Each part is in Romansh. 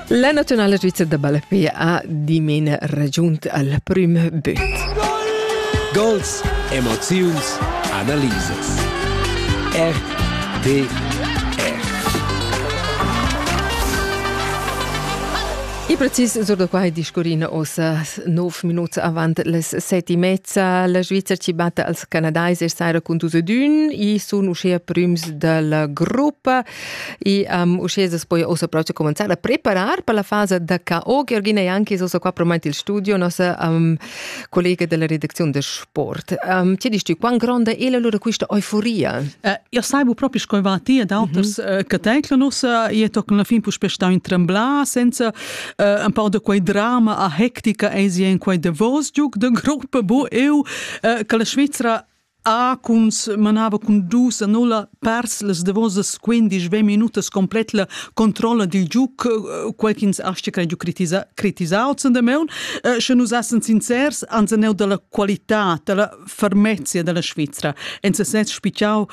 La naziunala svizra da ballapé ha dimena ragiunt al prüm böt. Gols, emoziuns, analisas. RTR. E precis sur da quai discurrina ossa 9 minuts avant les 7 e mezza. La Svizzera ci batta als Canadais e saira con dus ed un e sun uschea prüms dalla gruppa. E um, uschè as poja ussa proche cominciar a preparar per la fasa da KO. Georgina Janki è ussa qua promaint il studio, nossa um, collega della redazione de sport. Um, ti dici, quan gronda è la lura questa euforia? Uh, io sai bu proprio scoivati ed auters mm -hmm. uh, che teclo nos uh, e toc la fin pus pestau in trembla senza uh, un po' de quei drama a hectica e in quei de vos giuc de gruppa bo eu uh, che la Svizzera Ah, cuns manava cun dus annulla pers las davosas quindisch ventg minutas complet la controlla dil giug, quei ch'ins astga cregiu critisar critisau zendamaun. Sche nus essan sincers, ans aneu dalla qualitad, dalla fermezia dalla Svizra. En sesez spitgau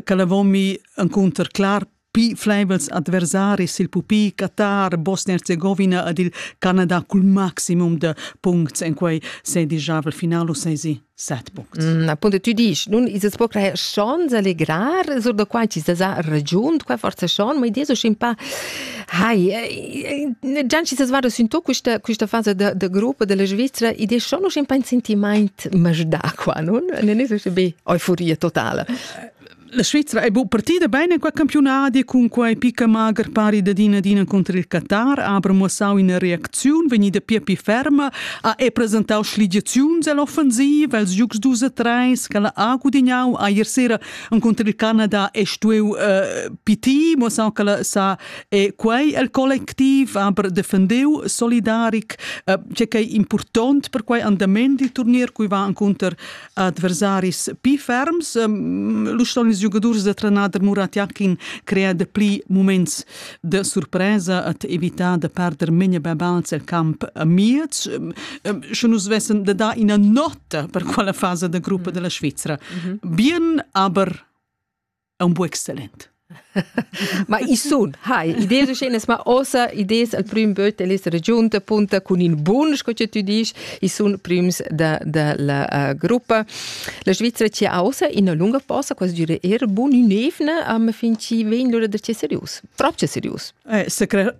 che la vomi encunter clar Pi flaivels adversaris il pupi Qatar, Bosnia-Herzegovina ed il Canada cul maximum de puncts en quei sedigiavel final u sesi set puncts. Mm, appunto tu dici, nun is es poc schon allegrar, sur da quai ci sa ragiunt, qua forza schon, ma idea so scin pa Hai, già ci sa svara sin tu questa questa fase da da gruppo della Svizzera, idea schon un schimpà in sentiment masdà qua, non? Ne ne so be euforia totale. La Svizra è bu partida bene qua campionadi cun quai picca magher pari da din adina contr il Qatar, aber muossau ina reacziun vegnida pia pi ferma, ha e presentau schligiaziuns all'offensiv els giugs 2 a 3 che ha gudignau a ier sera contr il Canada e stueu uh, piti, muossau che sa e quei el collectiv, aber defendeu solidaric, uh, che è important per quei andament di turnier cui va contr adversaris pli ferms. Lu ston ils giugadurs da trenader Murat Jakin crear de pli moments de surpresa et evitar de perder Menja Babals el camp miez. Sche nus vessen de dar ina nota per quella fase de gruppa mm. della Svizzera. Mm -hmm. Bien, aber è un buon exzellent. ma i sun, hai, idees uschenas, ma ossa idees al prim böt el essere giunta punta cun in bun, sco che tu dici, i sun prims da, da la uh, gruppa. La Svizzera ci ausa in lunga posa, quasi dire er bun in evna, ma fin ci vegn lura da ce serius, proprio serius. Eh, se cre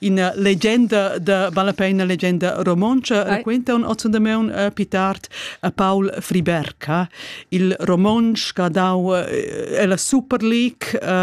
Ina legenda da vale la pena legenda romontscha raquenta un ozzondameun eh, più tard a Paul Friberg, il romontsch che ha dau eh, la Super League